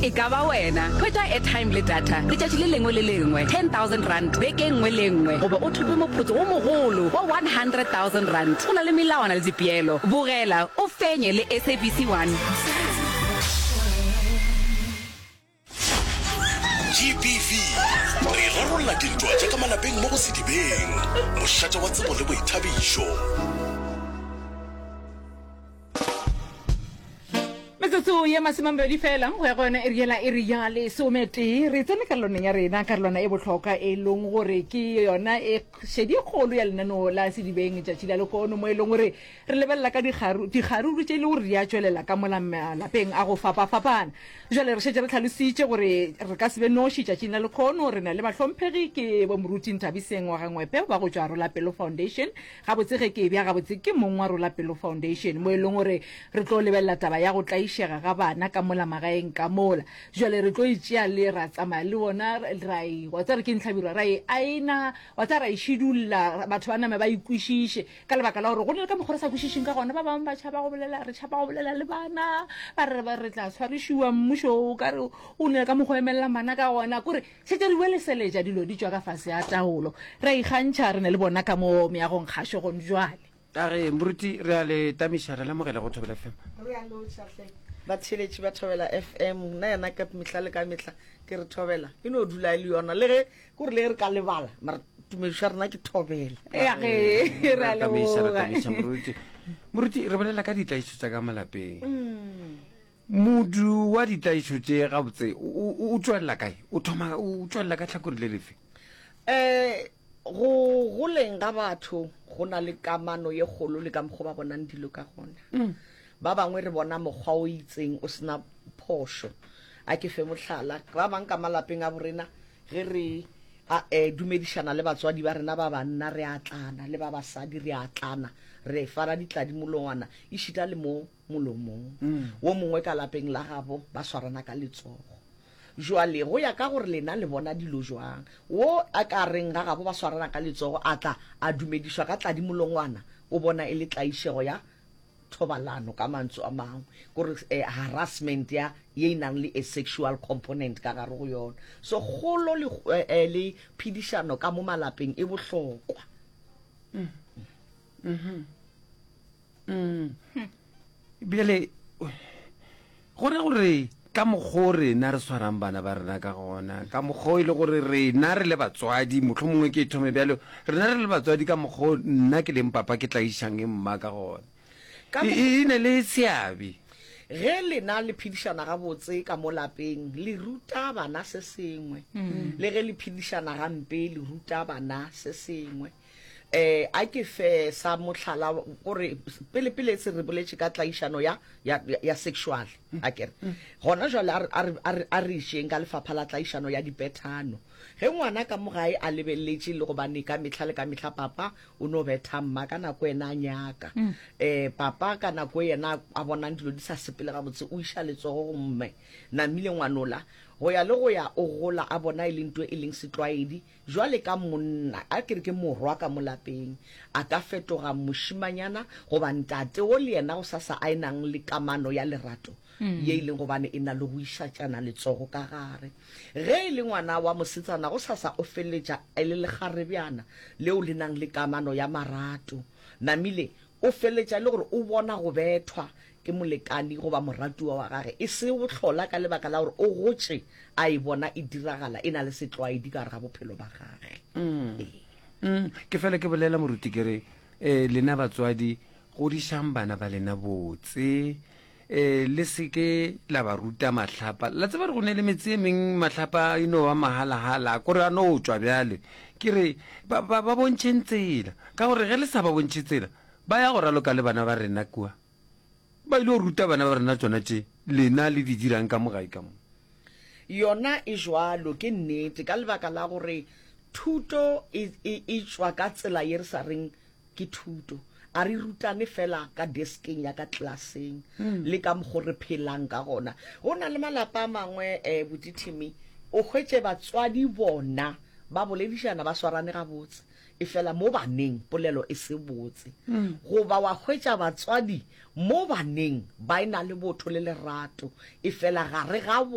E ka ba wena, hwetša airtime le data letšatši le lengwe le lengwe, R10,000 beke e nngwe le e nngwe goba o thope moputso wo mogolo wa R100,000. Go na le melawana le dipeelo. Bogela o fenye le SABC 1. GBV, Re rarolla dintwa tša ka malapeng mo go Sedibeng, mošate wa tsebo le boithabišo. metsotso ye masemamabedi fela go ya go yone e riela e re ya lesometee re tsene karolwaneng ya rena karolwana e botlhokwa e leng gore ke yona e šedi kgolo ya lenaneo la sedibeng tšatši la lekono mo e leng gore re lebelela ka dikgaruru tše e le gore di a tšwelela ka mola malapeng a go fapafapana jale re šetse re tlhalositše gore re ka sebe noši tšatšing la lekgono re na le bahlomphegi ke bomoruti nthabiseng wa gangwepe ba go tšwa rolapelo foundation Gabotse ge ke ebja gabotse ke mong wa Rola Pelo Foundation, mo e lego gore re tlo lebelela taba ya go tlaišega ga bana ka mola magaeng ka mola. Bjale re tlo e tšea le ra tsamaya le bona, ra e, wa tseba gore ke eng hlabirwa, ra e aena, wa tseba, ra e šidulla, batho ba name ba e kwešiše, ka lebaka la gore go na le ka mokgwa re sa kwešišeng ka gona. Ba bangwe ba tšhaba go bolela, re tšhaba go bolela le bana, ba re re tla tshwarišiwa, mmušo o ka re o na le ka mokgwa o emelela bana ka gona. Kore Šetše re boeleseletša dilo di tšwa ka fase a taolo, re a ikgantšha re na le bona ka mo meagong kgašo gone bjale. A re, Moruti, re a le tamiša, re lemogela go Thobela FM. Re a lotšha hle, batheeletši ba Thobela FM. Nna yena ka mehla le ka mehla ke re Thobela e no dula e le yona, le ge ke gore le ge re ka lebala, mara tumedišo ya rena ke Thobela. Ea ge, re a leboga. Re a tamiša, re tamiša, Moruti. Moruti, re bolela ka ditlaišo tša ka malapeng. Modu wa ditlaišo tše gabotse o, o, o tšwelela kae? O thoma, o tšwelela ka tlhakore le lefe? Um, go goleng ga batho go na le kamano ye kgolo le ka mokgwa ba bonang dilo ka gona. Ba bangwe re bona mokgwa o itseng o se na phošo. A ke fe mohlala, ba bang ka malapeng a borena, ge re a, eh, dumedišana le batswadi ba rena ba banna, re a tlana, le ba basadi re a tlana, re fana ditladi molongwana, ešita le mo molomong wo mongwe ka lapeng la gabo, ba swarana ka letsogo. Joale, go ya ka gore lena le bona dilo jwang, wo a ka reng ga gabo ba swarana ka letsogo a tla a dumedišwa ka tladimolongwana, o bona e le tlaišego ya thobalano, ka mantsu a mangwe, ke gore eh, harassment ya ye e nang le a sexual component ka gare go yona. So kgolo le, eh, le phedišano ka mo malapeng e bohlokwa. mm-hmm. mm. bjale go ra gore ka mokgwa rena re tshwarang bana ba rena ka gona ka mokgwa e le gore rena re le batswadi motlho mongwe ke thome bjalo rena re le batswadi ka mokgwa nna ke leng papa ke tla išang e mma ka gona e ne le seabe ge lena le phedišana gabotse ka mo lapeng le ruta bana se sengwe mm. le ge le phedišana gampe le ruta bana se sengwe A ke fe sa mohlala gore pele pele se re boletše ka tlaišano ya ya ya sexual a kere gona jwale a re a re a re išeng ka lefapha la tlaišano ya dipethano ge ngwana ka mogae a lebelletše le gobane ka mehla le ka mehla papa o no betha mma ka nako yena a nyaka um papa ka nako yena a bonang dilo di sa sepele gabotse o iša letsogo go mme namile ngwanola go ya le go ya o gola a bona e le nto e leng setlwaedi Bjale ka monna, a ke re ke morwa ka mo lapeng, a ka fetoga mošimanyana goba ntate wo le yena gosasa a e nang le kamano ya lerato ye e leng gobane e na le go išatšana letsogo ka gare. Ge e le ngwana wa mosetsana gosasa o feleletša e le lekgarebjana leo le nang le kamano ya marato. Namile O feletša e le gore o bona go bethwa ke molekani goba moratiwa wa gage e se bohlola ka lebaka la gore o gotše a e bona e diragala e na le setlwaedi ka gare ga bophelo ba gage. Ke fela ke bolela moruti ke re, um lena batswadi godišang bana ba lena botse. Ee, le se ke la ba ruta mahlapa. La tseba re go ne le metse e meng mahlapa a ino ba mahalahala, a kore a no tšwa bjale. Ke re, ba, ba, ba bontšheng tsela. Ka gore ge le sa ba bontšhe tsela, ba ya go raloka le bana ba rena kua. Ba ile go ruta bana ba rena tsona tše lena le di dirang ka mo gae ka mo. Yona e jwalo, ke nnete, ka lebaka la gore thuto e, e, e tšwa ka tsela ye re sa reng Ke thuto. A re rutane fela ka deskeng ya ka klaseng le ka mokgo re phelang ka gona. Go na le malapa a mangwe um bodithimi o hwetše batswadi bona ba boledišana ba swarane gabotse, efela mo baneng polelo e se botse. Goba wa hwetša batswadi mo baneng ba e-na le botho le lerato, efela gare ga bona.